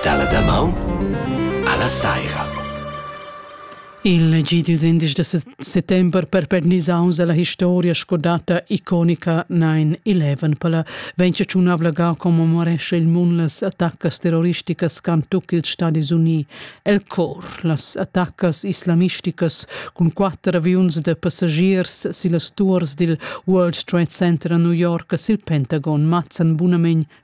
Dalla damaun alla saira. Il G20 da settember perpernisaus alla historia scordata iconica 9-11 pella vegn ciunavla ga commemoresce il mun las attaccas terroristicas can tuc ils Stadis Uni el cor las attaccas islamisticas cun quatter aviuns de passagiers sillas tuors dil World Trade Center a New York sil Pentagon mazzan bunamein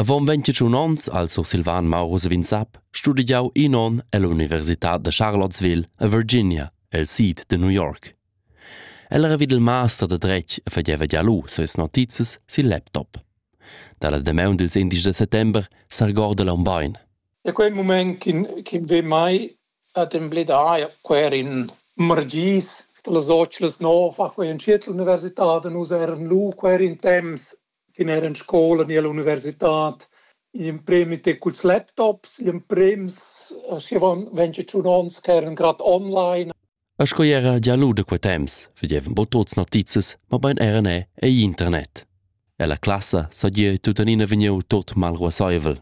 Avon ventgatun onns, al sursilvan Maurus Vinsap, studegiau in onn ell'universitad da Charlottesville a Virginia, el sid de New York. El era vid il master de dretg e fageva gia lu ses notizias sil laptop. Dalla damaun dils indici de settember s'argorda l'aun bein. Da quei mument ch'in ve mai ad embledar quer in margis, las otschlas nov, a quei en tschiet l'universitad nus eran lu quer in temps che n'era en scola ni all'universitad in premi te culs laptops, in prems avon 21 onns che eran grad online. E sco era gia lu da quei temps vedevan bo tuts notizas, mobein era ne ei internet. E la classa sagie tuttenina vegniu tot mal ruasseivel.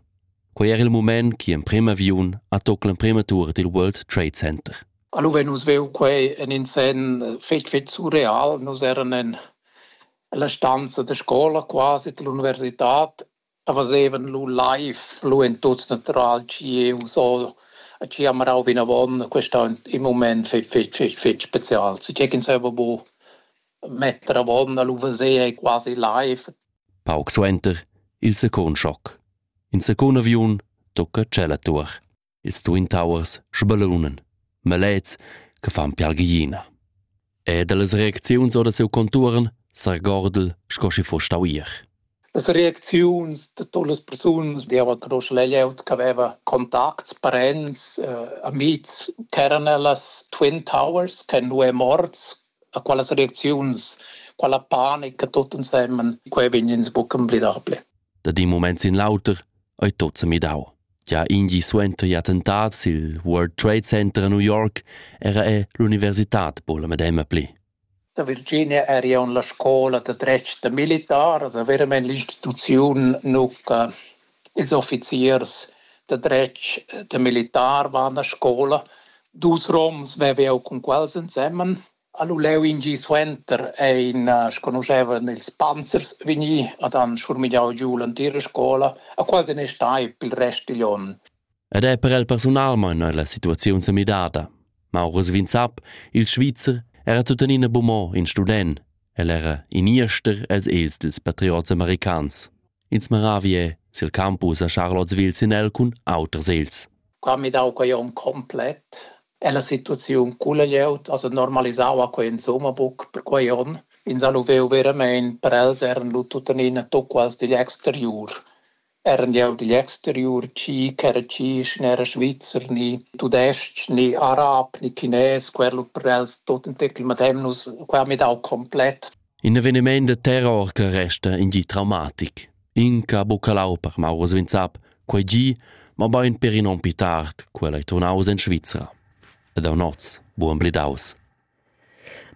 Quei era il moment che emprem aviun ha toc l'emprema tur dil World Trade Center. Allora nus veu quei en in sen fetg fetg surreal, nus eran en La stanza da scola, quasi l'universitad, fazevan lu live, lu en tuts natural, tgie u so, tgi ha marau vinavon. Quest ha in mument fetg, fetg, fetg, fetg special. Tgi ch'ins haveva bu metter avon a lu veser ei quasi live. Pauc suenter il secund schoc. In secund aviun tocca tschella tuor. ils Twin Towers sbalonan, malets che fan piargliina. E dallas reacziuns ora siu contuorn s'argordel sco schi foss stau ier. Las reacziuns da todas las persunas devan conoscer la glieud che aveva contacts, parents, eh, amics, ch'eran las Twin Towers, che nu è morts, a qualas reacziuns, quella panica tot ensemen, quei vegn ins buc emblidable. Da di moments in l'auter ei tot semidau. Gia in gi suenter il attentat sil World Trade Center a New York era ei l'universitad buca la medema pli. Da Virginia eri aunc la scola da dretg da militars, veramein l'instituziun nuca. Ils officiers da dretg da militar van a scola. Dus roms vev jau cun quels ensemen. Ha lu leu in gi suenter ein sconuschevan ils panzers vegni ad han schurmigliau giu l'entira scola, a quasi ne stai pil rest digl onn. Ed ei per el persunalmein ei la situaziun semidada. Maurus Vinzap, il Svizzer, era tuttenina bumò in student. El era in ester els els dils patriots americans. Ins maravie sil campus a Charlottesville sin el cun auters els. Qua mi dau quei onn complet è la situaziun culla glieud also normalisau qua insomma buc per quei onn. Ins ha lu veu veramein per els eran lu tuttenina tucquals digl exteriur. Eran glieud digl exteriur chi ch'era tschich ne era Svizzer ni tudestg ni arab ni chines, quer lu per els tut in tecl madem nus qua mi dau complett. In evenimaint da terror che resta in gi traumatic. Inca buccalau per Mauro Svinsap, quei gi, ma bain per in on pi tard, quella ei turnaus en Svizra. Ed a noz, buon blidaus.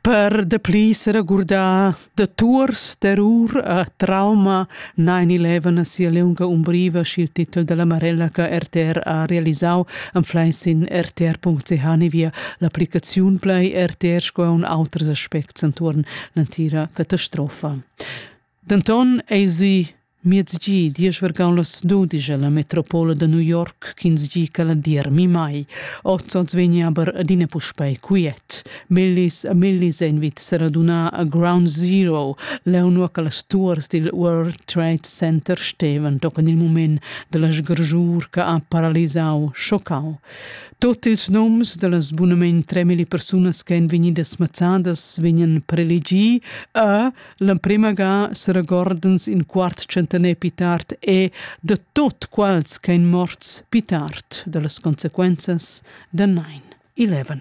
Per de pli se regurda de tours d'errur e trauma Nine Eleven sia liunga umbriva sch'il titel dalla Marella che RTR ha realisau anfleis in rtr.ch l'applicaziun play RTR sco un auters aspects entuorn l'entira catastrofa. Denton ei si Miezgi diesch vergaun las dudisch la metropola da New York ch'ins gi che la dir mi mai. Oz oz vegni aber adina puspei quiet. Millis e millis ein vits radunà a Ground Zero, leunua che las tuors dil World Trade Center stevan tochen il mument dalla sgargiur che ha paralisau, schoccau. Tot ils noms dallas bunament 3000 persunas che ein vegnidas mazzadas vegnan prelegì e l'emprema ga seregordens in quart centener pi tard e de tot quals che ein morts pi tard dallas consequenzas da 9-11.